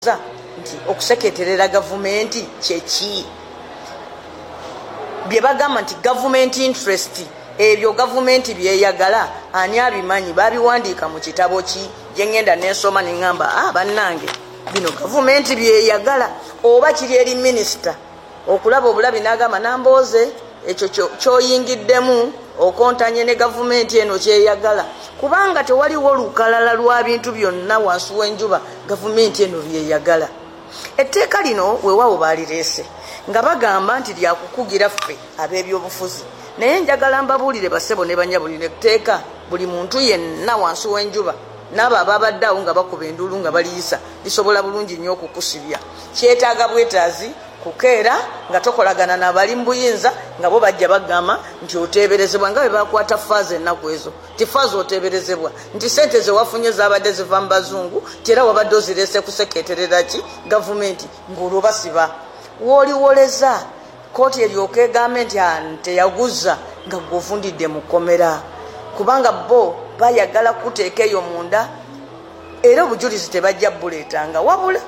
Abuuza nti, Okuseketerera gavumenti kye ki? Bye bagamba nti government interest, ebyo gavumenti by'eyagala, ani abimanyi? Baabiwandiika mu kitabo ki? Gye ngenda ne nsoma ne ngamba, Ah, bannange, bino gavumenti by'eyagala oba kiri eri minisita? okulaba obulabi n'agamba Nambooze ekyo ky'oyingiddemu okontanye ne gavumenti eno ky'eyagala kubanga tewaliwo lukalala lwa bintu byonna wansi w'enjuba gavumenti eno by'eyagala. Etteeka lino weewaawo baalireese nga bagamba nti lya kukugira ffe abeebyobufuzi naye njagala mbabuulire bassebo ne bannyabo lino etteeka buli muntu yenna wansi w'enjuba N'abo abaabadde agho nga bakuba enduulu nga bali isa lisobola bulungi inho okukusibya. Kyetaaga bwetaazi kukeera nga tokolagana na bali mu buyinza nga bo baja bakugamba nti oteeberezebwa nga bwe baakwata faaza enaku ezo. Ti faaza oteeberezebwa nti sente ze wafunye zaabadde ziva mu Bazungu nti era wabadde ozireese kusekeeterera ki Gavumenti ng'olwo basiba w'oli woleza. Kooti eryoke egambe nti Ante yaghuza nga gw'ovundidde mu kkomera kubanga bbo bayagala kukuteeka eyo munda era obujulizi tebajja bbuleetanga wabula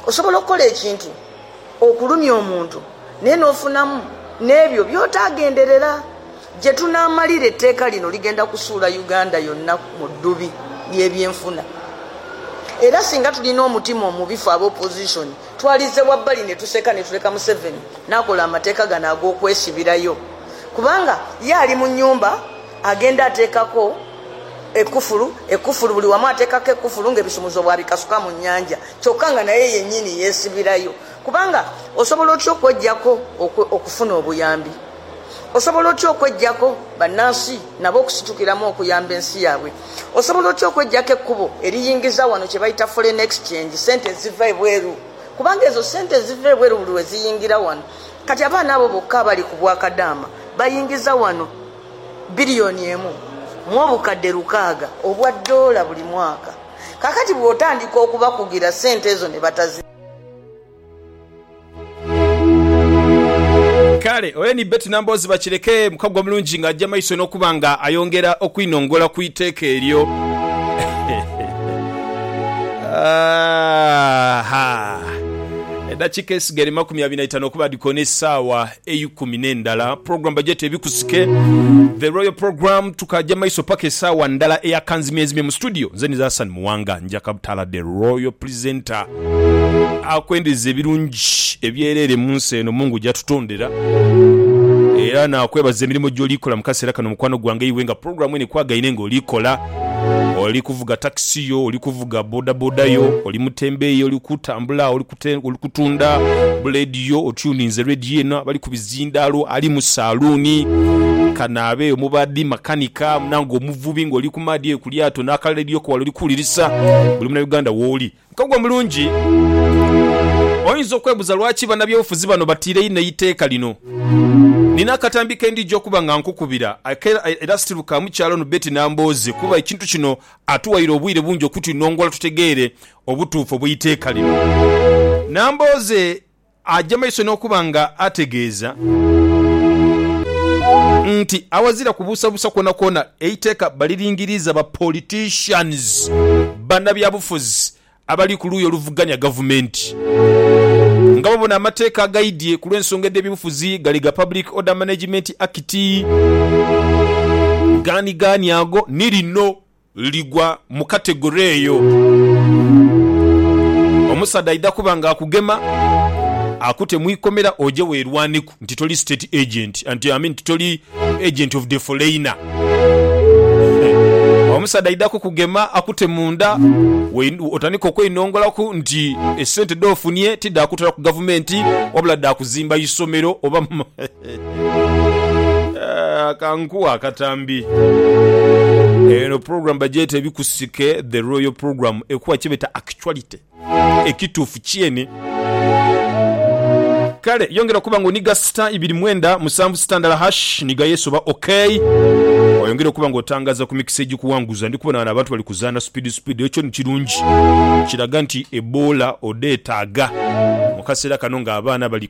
osobola okukola ekintu okulumya omuntu naye n'ofunamu n'ebyo by'otaagenderera. Gye tunaamalira etteeka lino ligenda kusuula Uganda yonna mu ddubi ly'ebyenfuna era singa tulina omutima omubi ffe aba opozisoni Twalize wabbali ne tuseka ne tuleka Museveni n'akola amateeka gano ag'okwesibirayo kubanga ye ali mu nnyumba agenda ateekako ekkufulu, ekkufulu, buli wamu ateekako ekkufulu ng'ebisumuzo bw'abikasuka mu nnyanja kyokka nga naye yennyini yeesibirayo kubanga osobola otya okweggyako okufuna obuyambi? Osobola otya okwegyaku bannansi nabo okusitukiramu okuyamba ensi yaabwe? Osobola otya okwegyaku ekkubo eriyingiza wano kye bayita Foreign Exchange, sente eziva ebweru? Kubanga ezo sente eziva ebweru buli lwe ziyingira wano, kati abaana abo bokka abali ku bwa kadaama bayingiza wano billion emu mu obukadde lukaaga obwa doola buli mwaka. Kaakati bw'otandika okubakugira sente ezo ne batazirya. Kale ole ni Betty Nambooze bakireke mukago omulungi ng'aja maiso n'okuba nga ayongera okwinongola ku iteeka eryo. Aha! Edakika esigere makumi abiri na itano okuba dhi koona esaawa eikumi n'endala program bagyeta ebikusike the royal program tukaja maiso paka esaawa ndala eya kanzimyenzimye mu studio nze niza Hassan Muwanga njaka butaala the royal presenter akwendeza ebirungi ebyerere munsi eno mungu gyatutondera era nakwebaza emirimo gyoli kola mukasera kano mukwano gwange iwe nga program eno ekwagaine nga oli kola oli kuvuga taxi yo oli kuvuga bodaboda yo oli mutembeeyi oli kutambula oli Ate oli kutunda bu leediyo, otuuninze leediyo eno, abali ku bizindaalo, ali mu saaluuni, kanaabe, omubaadhi, makanika, munaanga omuvubi, ng'oli ku maadhi eyo ku lyato n'aka leediyo ko wala oli kuwulirisa. Buli Munauganda w'oli ka gwe mulungi. Oyinza okwebuuza lwaki bannabyobufuzi bano batiira inho eiteeka lino. Nina akatambi ke ndija okuba nga nkukubira era still ka mukyala ono Betty Nambooze kuba ekintu kino atuwaire obwire bungi okutunongola tutegeere obutuufu obw'eiteeka lino. Nambooze aja maiso n'okuba nga ategeeza nti awazira kubuusabuusa kwonakwona eiteeka baliringiriiza ba politicians, banabyabufuzi, abali ku luuyi oluvuganya gavumenti nga babona amateeka agaidhye ku lw'ensonga edh'ebyobufuzi gali ga Public Order Management Act, gaanigaani ago ni lino ligwa mu kategore eyo. Omusaadha aidha kuba nga akugema akute mu ikomera oje weerwaneku nti toli state agent, nti I mean nti toli agent of the foreigner. Omusaadha aidha kukugema akute munda we- otandike okweinongolaku nti esente dh'ofunie ti dha kutwala ku gavumenti wabula dha kuzimba isomero oba Kankuwe akatambi. Eno program bagyeta ebikusike the royal program ekuwa kyebeta actuality ekituufu kyene. Kale yongera okuba nga oniga star ibiri mwenda musanvu star ndala hash niga yes oba ok oyongere okuba nga otangaza ku mikisa egikuwanguza. Ndikubona wano abantu bali kuzaana speed speed ekyo ni kirungi kiraga nti eboola odhetaga mukaseera kano nga abaana bali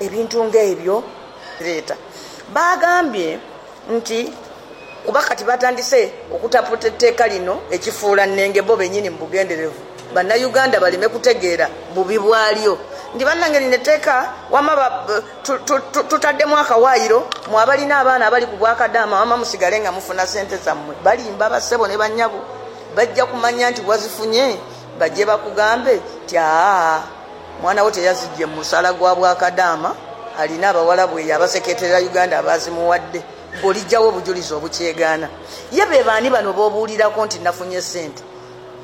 ebintu nga ebyo bireeta. Baagambye nti kuba kati baatandise okutaputa etteeka lino ekifuula nnenge bo bennyini mu bugenderevu Bannayuganda baleme kutegeera bubi bwalyo nti bannange lino etteeka wamma tutaddemu akawaayiro mmwe abalina abaana abali ku bwakadaama wamma musigale nga mufuna ssente zammwe. Balimba bassebo ne bannyabo bajja kumanya nti wazifunye. Baje bakugambe nti, Aagha, mwana wo teyazidhye mu musaala gwa bwakadaama, alina abawalabu eyo abasekeeterera Uganda abaazimuwadde. Ggwe oliggyawa obujulizi obukyegaana? Ye be baani bano b'obuulirako nti nafunye sente?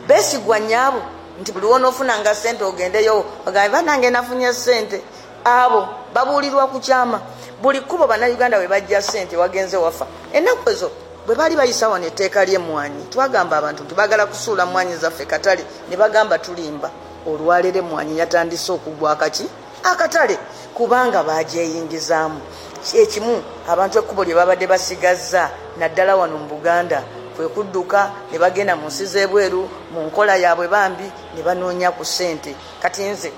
Beesigwa nnyabo nti buli w'onoofunanga sente ogendeyo obagambe, Bannange nafunye sente. Abo babuulirwa ku kyama. Buli kubo Bannayuganda we baggya ssente wagenze wafa. Ennaku ezo bwe baali bayisa wano etteeka ly'emmwaanyi, twagamba abantu nti baagala kusuula mmwaanyi zaffe katale ne bagamba tulimba. Olwaleero emmwaanyi yatandise okugwa akaki akatale kubanga baagyeyingizaamu. Kye kimu abantu ekkubo lye baabadde basigazza naddala wano mu Buganda kwe kudduka ne bagenda mu nsi z'ebweru mu nkola yaabwe bambi ne banoonya ku ssente. Kati nze.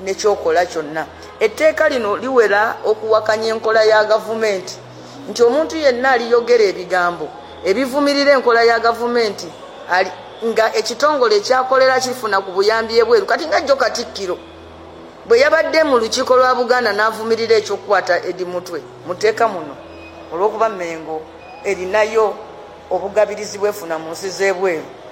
ne ky'okola kyonna. Etteeka lino liwera okuwakanya enkola ya gavumenti nti omuntu yenna aliyogera ebigambo ebivumirira enkola ya gavumenti ali nga ekitongole ekyakolera akifuna ku buyambi ebweru kati nga jjo Katikkiro bwe yabadde mu lukiiko lwa Buganda n'avumirira eky'okukwata Eddie Mutwe mu tteeka muno olw'okuba Mmengo erinayo obugabirizi bw'efuna mu nsi z'ebweru.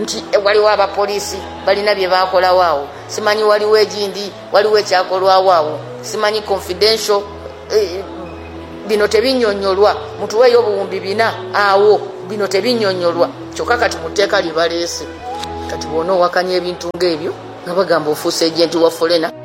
nti ghaligho abapoliisi balina bye baakolagho agho. Simanyi ghaligho egindi, ghaligho ekyakolwagho agho. Simanyi confidential, bino tebinyonyolwa. Mutugheyo obuwumbi bina agho, bino tebinyonyolwa. Kyoka kati mu teeka lye baleese, kati bwona owakanya ebintu nga ebyo nga bagamba ofuuse agent wa foreigner.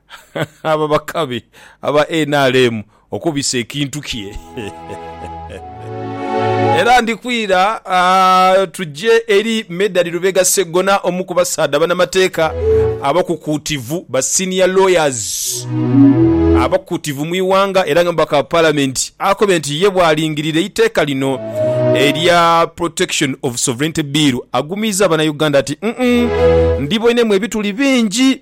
Abo bakabi aba nrm okubisa ekintu kye. Era ndikwira tuje eri Medard Lubega Sseggona omu ku basaadha banamateeka abakukuutivu ba senior lawyers abakukuutivu mu ighanga era nga mubaka wa palamenti akobe nti ye bwalingirira eiteeka lino erya Protection of Sovereignty Bill agumiiza banauganda nti, Ndiboinemu ebituli bingi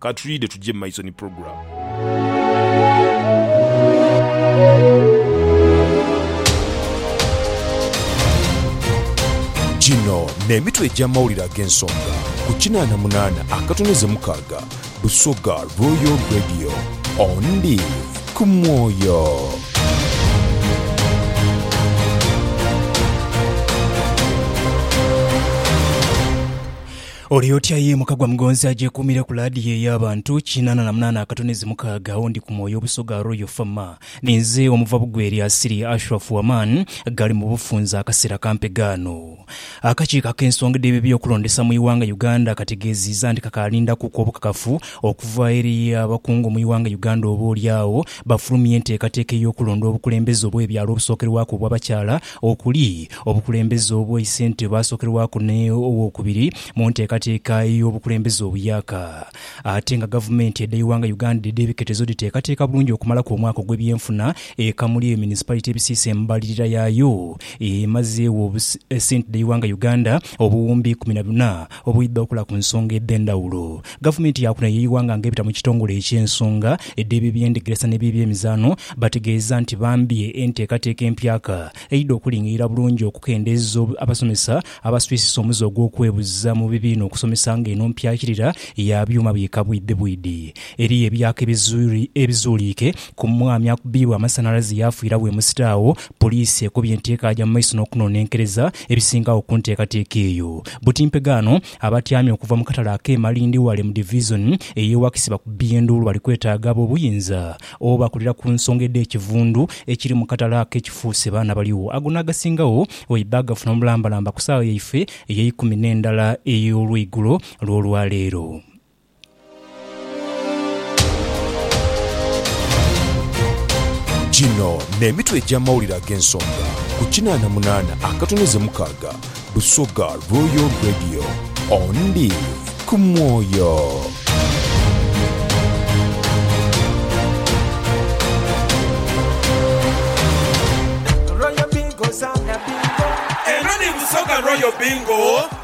Ka twidhe tuje mu maiso ni pulogulaamu. Gino n'emitwe egy'amawulire ag'ensonga ku kinaana munaana akatoneze mukaaga Busoga Royal Radio. On Live ku Mwoyo. Oli otya ye mukagwa mugonzi agyekuumire ku laadiyo ey'abantu kinaana na munaana akatonezi mukaaga oundi ku mwoyo obusoga Royal Fama? Ninze omuva bugwe erya Asili Ashraf Waman ghali mu bufunze akaseera kampe ghano. Akakiiko ak'ensonga edh'ebyokulondesa mu ighanga Uganda kategeeziiza nti kakaalindakuku obukakafu okuva eri abakungu mu ighanga Uganda oboolyawo bafulumye enteekateeka ey'okulonda obukulembeze obw'ebyalo obusookerwaku obw'abakyala okuli obukulembeze obwa Issentebe asookerwaku ne Owookubiri mu nteekateeka ey'obukulembeze obuyaaka. Ate nga Gavumenti edh'eighanga Uganda edh'ebiketezo dhiteekateeka bulungi okumalaku omwaka ogw'ebyenfuna e Kamuli eyo Munisipalit ebisiisa embalirira yaayo emazeegho ssente dh'eighanga Uganda obuwumbi ikumi na buna Obwidha okola ku nsonga edh'endhawulo, gavumenti ya kuno ey'eighanga nga ebita mu kitongole eky'ensonga edh'eby'ebyendegeresa n'eby'ebyemizano bategeeza nti bambye enteekateeka empyaka eidha okulingirira bulungi okukendeeza abasomesa abaswisisa omuze ogw'okwebuza mu bibiina okusomesa nga eno mpyakirira ya byuma biika bwidhi bwidhi eri ebyaka ebizuuliike ku mwami akubiirwa amasanhalaze yaafiiragho e Musita agho Poliisi ekubye nti ekaaja mu maiso n'okunonenkereza ebisingagho ku nteekateeka eyo. Buti mpegaano, abatyaami okuva mu katale ak'e Malindi wale mu Divizoni ey'e Wakisi bakubbye enduulu bali kwetaaga ab'obuyinza oba bakulira ku nsonga edh'ekivundu ekiri mu katale ako ekifuuse baana baligho ago n'agasingawo oibe bagafuna omulambalamba ku saagha yaife ey'eikumi n'endala ey'olweigulo lw'olwaleero. Gino n'emitwe egy'amawulire ag'ensonga ku kinaana munaana akatono ze mukaaga Busoga Royal Radio. Ondi ku mwoyo. Eno ni Busoga Royal Bingo.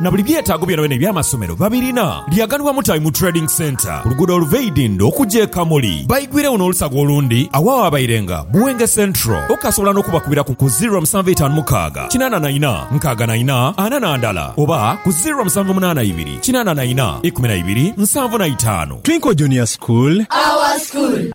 na buli byetaago byonabyona eby'amasomero babirina. Lyaganibwa Mutabi mu Trading Centre ku luguudo oluva e Idindho okuja e Kamuli. Baigwiregho n'olusaga olundi agho awaabairenga Buwenge Central. Okasobola n'okubakubira ku ku ziro musanvu etaanu mukaaga kinaana na ina nkaaga na ina ana na ndala oba ku ziro musanvu munaana ibiri kinaana na ina ikumi na ibiri nsanvu na itaanu. Twinkle Junior School. Our School.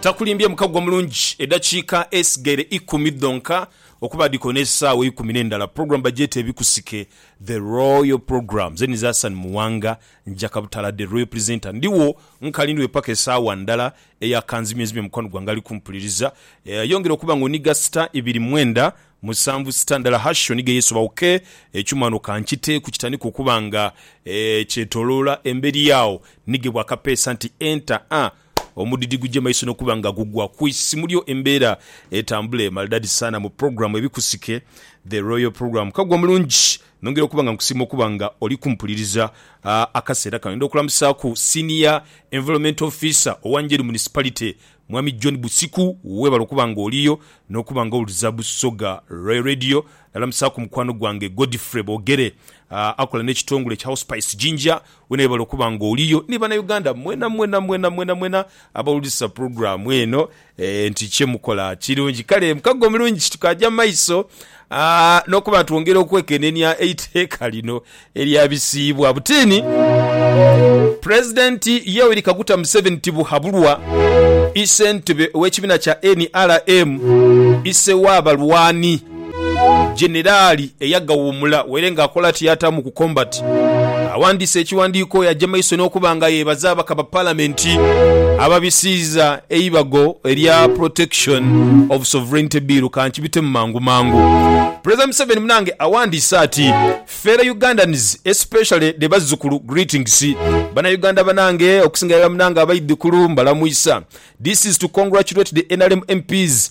Takulimbye mukago omulungi, edakiika esigaire ikumi dhonka okuba dhiko n'esaawa eikumi n'endala, program bagyeta Ebikusike, The Royal Program. Ze nize Asan Muwanga, Njaka Butala the Royal Presenter. Ndiwo nkali ndiwe paka esaawa ndala eya kanzimyenzimye mukwano gwange ali kumpuliriza. Yongera okuba nga oniga star ibiri mwenda musanvu star ndala hash onige yesobawo ke ekyuma wano kankiteeku kitandike okuba nga kyetoloola emberi agho nigebwa akapeesa nti enter a. Omudidi guje maiso nokuba nga gugwa ku isimu lyo embeera etambule maridadi saana mu pulogulamu Ebikusike The Royal Program Kaggwa mulungi nongera okuba nga nkusiima okuba nga oli kumpuliriza akaseera kano Ndidha okulamusaaku Senior Environment Officer owa Njeru Municipality Mwami John Busiku webale okuba nga oliyo nokuba nga owuliriza Busoga Royal Radio Nalamusaaku mukwano gwange Godfrey Bogere akola nekitongole kya Hospice Jinja Wenaebale okuba nga oliyo ni banauganda mwena mwena mwena mwena mwena abawulirisa program eno nti kyemukola kirungi kale mukago mulungi kitukaja maiso nokuba twongera okwekenenia eiteeka lino eryabisiibwa butini president Yoweri Kaguta Museveni Tibuhaburwa isentebe owekibina kya nrm ise wabalwani Jenerali eyagawuumula were nga akola tiyata mu ku combat awandiise ekiwandiiko oyo aje maiso n'okuba nga yebaza ababaka ba palamenti ababisiiza eibago erya Protection of Sovereignty Bill kankibitemu mangu mangu. Pulezidenti Museveni munange awandiise ati Fellow Ugandans especially the bazzukulu greetings Bana Uganda banange okusinga irala munange abaidhikulu mbalamwisa This is to congratulate the nrm MPs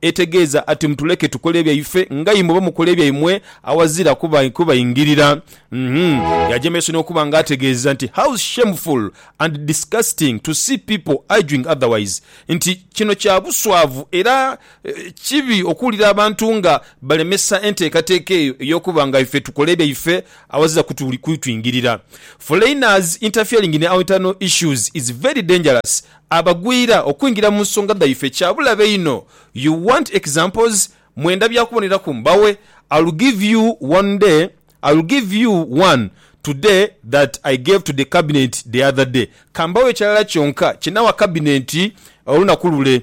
Etegeeza ati, Mutuleke tukole ebyaife nga imwe oba mukole ebyaimwe awazira kubaingirira. Uhmm. Yajemeesa n'okuba nga ategeeza nti, How shameful and disgusting to see people arguing otherwise, nti, Kino kya buswavu era kibi okuwulira abantu nga balemesa enteekateeka eyo ey'okuba nga ife tukola ebyaife awazira kutuingirira. Foreigners interfering in our internal issues is very dangerous Abagwira okwingira mu nsonga dhaife kya bulabe inho. You want examples? Mwenda bya kuboneraku? Mbawe? I'll give you one day, I'll give you one today that I gave to the cabinet the other day. Ka mbawe ekirala kyonka kye nawa kabinenti olunaku lule.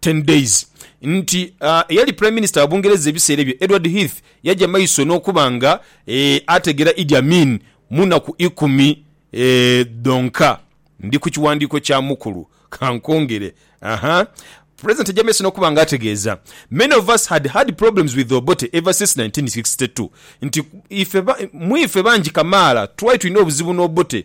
Ten Days nti eyali Prime Minister wa Bungereza ebiseera ebyo, Edward Heath yaja maiso n'okuba nga ategeera Idi Amin mu naku ikumi dhonka. Ndi ku kiwandiiko kya mukulu. Ka nkwongere. Aha. President yaja maiso n'okuba nga ategeeza, Many of us had had problems with Obote ever since nineteen sixty two, nti ife, mu ife bangi kamaala twali tulina obuzibu n'Obote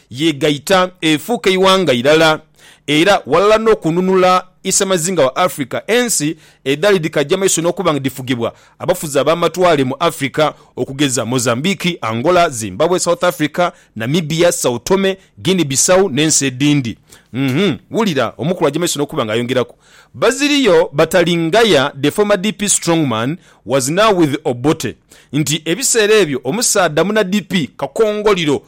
yeegaita efuuka eighanga irala era ghalala n'okununula isemazinga wa Africa, ensi edhaali dhikaja maiso n'okuba nga dhifugibwa abafuzi ab'amatwale mu Africa okugeza Mozambique, Angola, Zimbabwe, South Africa, Namibia, Sao Tome, Guinea-Bissau n'ensi edhindi. Uhmm wulira omukulu aja maiso n'okuba nga ayongeraku, Baziriyo Batalingaya, the former DP strongman, was now with Obote nti ebiseera ebyo omusaadha muna DP kakongoliro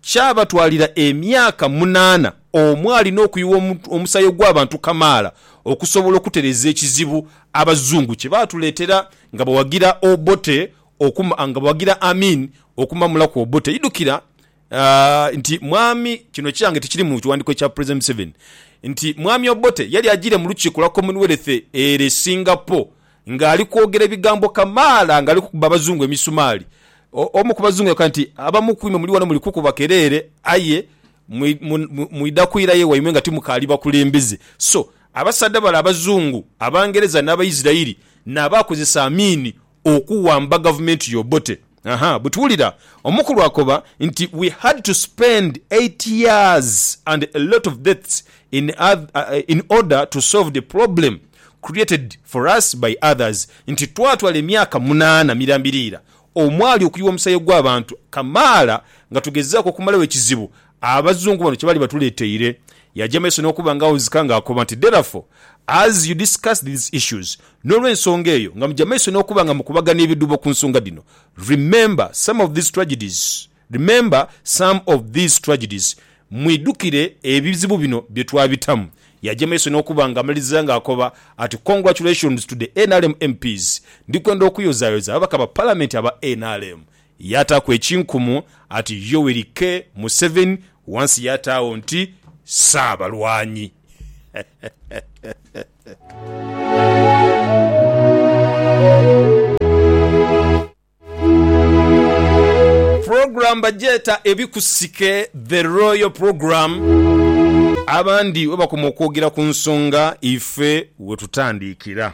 Kyabatwalira emyaka munaana omwali n'okuyuwa omusaayi ogw'abantu kamaala okusobola okutereeza ekizibu Abazungu kye baatuleetera nga bawagira Obote okuma nga bawagira Amin okumamulaku Obote. Idhukira nti Mwami, kino kyange tikiri mu kiwandiiko ekya President Museveni, nti Mwami Obote yali ajiire mu lukiiko lwa Commonwealth ere Singapore Nga ali kwogera ebigambo kamaala nga ali kukuba Abazungu emisumaali, omu ku Bazungu yakoba nti, Abamu ku imwe muli ghano muli kukuba kereere, aye mwidha kwirayo ewaimwe nga timukaali bakulembeze. So, abasaadha bale Abazungu, Abangereza n'Abaisiraeli n'abaakozesa amiini okuwamba gavumenti y'Obote. Aha, but wulira, omukulu akoba nti we had to spend eight years and a lot of deaths in in order to solve the problem created for us by others, nti twatwala emyaka munaana mirambirira omwali okuyiwa omusaayi ogw'abantu kamaala nga tugezaaku okumalagho ekizibu Abazungu bano kye bali batuleteire. Yaja mu maiso n'okuba nga awuzika nga akoba nti, Therefore, as you discuss these issues, n'olw'ensonga eyo, nga muja mu maiso n'okuba nga mukubagana ebidhubo ku nsonga dhino, remember some of these tragedies, remember some of these tragedies, mwidhukire ebizibu bino bye twabitamu. Yaja mu maiso n'okuba nga amaliriza nga akoba ati, Congratulations to the nrm MPs, ndi kwenda okuyozayoza ababaka ba Palamenti aba nrm yaataaku ekinkumu ati Yoweri K. Museveni, wansi yaataagho nti Ssaabalwanyi. Pulogulaamu bagyeta Ebikusike, The Royal Programme, abandi bwebakoma okwogera ku nsonga ife wetutandiikira.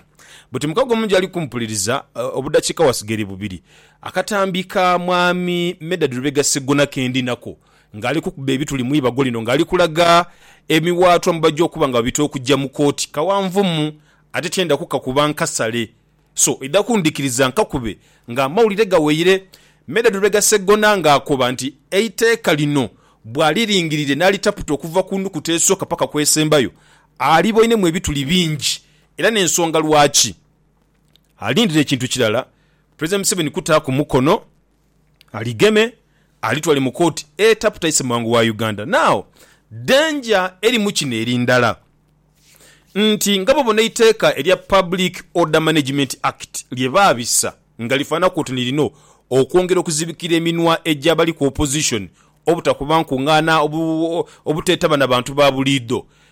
Buti mukago mungi ali kumpuliriza, obudakiika wasigaire bubiri. Akatambi ka Mwami Medard Lubega Sseggona ke ndi nako ng'ali kukuba ebituli mu ibago lino ng'ali kulaga emiwaatwa mwe baja okuba nga babita okugya mu kooti kawanvumu ate tyenda kukakuba nkasale so idha kundhikiriza nkakube ng'amawulire gaweire. Medard Lubega Sseggona ng'akoba nti eiteeka lino bw'aliringirire n'alitaputa okuva ku nukuta esooka paka ku esembayo aliboinemu ebituli bingi era n'ensonga lwaki. alindire kintu kirala Pulezidenti Museveni kutaaku mukono aligeme alitwale mu kooti etaputa Issemwango wa Uganda. Now, danger erimu kino eri ndala nti nga bwobona eiteeka erya Public Order Management Act lye baabisa nga lifaanaku oti nilina okwongera okuzibikira eminwa egy'abali ku opposition obutakuba nkungaana obuteetaba na bantu ba buliidho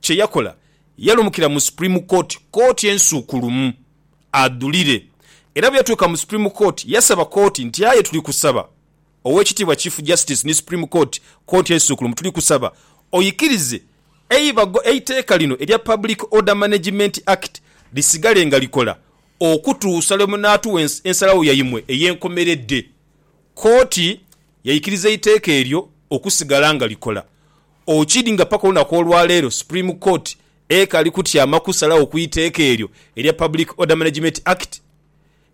Kye yakola, yalumukira mu Supreme Court, kooti ensuukulumu, adhulire. Era bwe yatuuka mu Supreme Court, yasaba kooti nti, Aye tuli kusaba, Oweekitiibwa Chief Justice ni Supreme Court, kooti ensuukulumu, tuli kusaba oikirize eibago eiteeka lino erya Public Order Management Act lisigale nga likola okutuusa lwe munaatuwa ensalagho yaimwe ey'enkomeredde. Kooti yaikiriza eiteeka eryo okusigala nga likola. Okid nga paka olunaku olwaleero Supreme Court ekali kutyama kusalagho ku iteeka eryo erya Public Order Management Act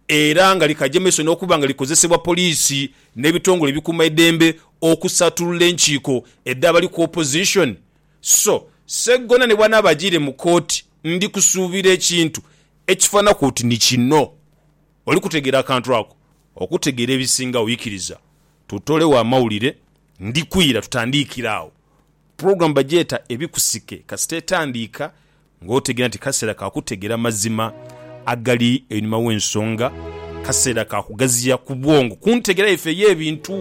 era nga likaja maiso n'okuba nga likozesebwa poliisi n'ebitongole ebikuuma eidembe okusattulula enkiiko edh'abali ku opposition so Sseggona ni bwanaaba ajiire mu kooti ndi kusuubira ekintu ekifananaku oti ni kino oli kutegeera akantu ako. Okutegeera ebisingagho ikiriza tutolegho amawulire Ndi kwira tutandiikire agho. Program bagyeta Ebikusike kasita etandiika ng'otegeera nti kaseera ka kutegeera mazima agali einhuma w'ensonga, kaseera ka kugaziya ku bwongo ku ntegeera yaife ey'ebintu.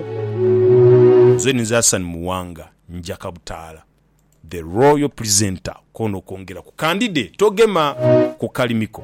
Nze ni nze Hassan Muwanga njaka butaala, The Royal Presenter, k'onokwongera ku kandide togema ku kalimi ko.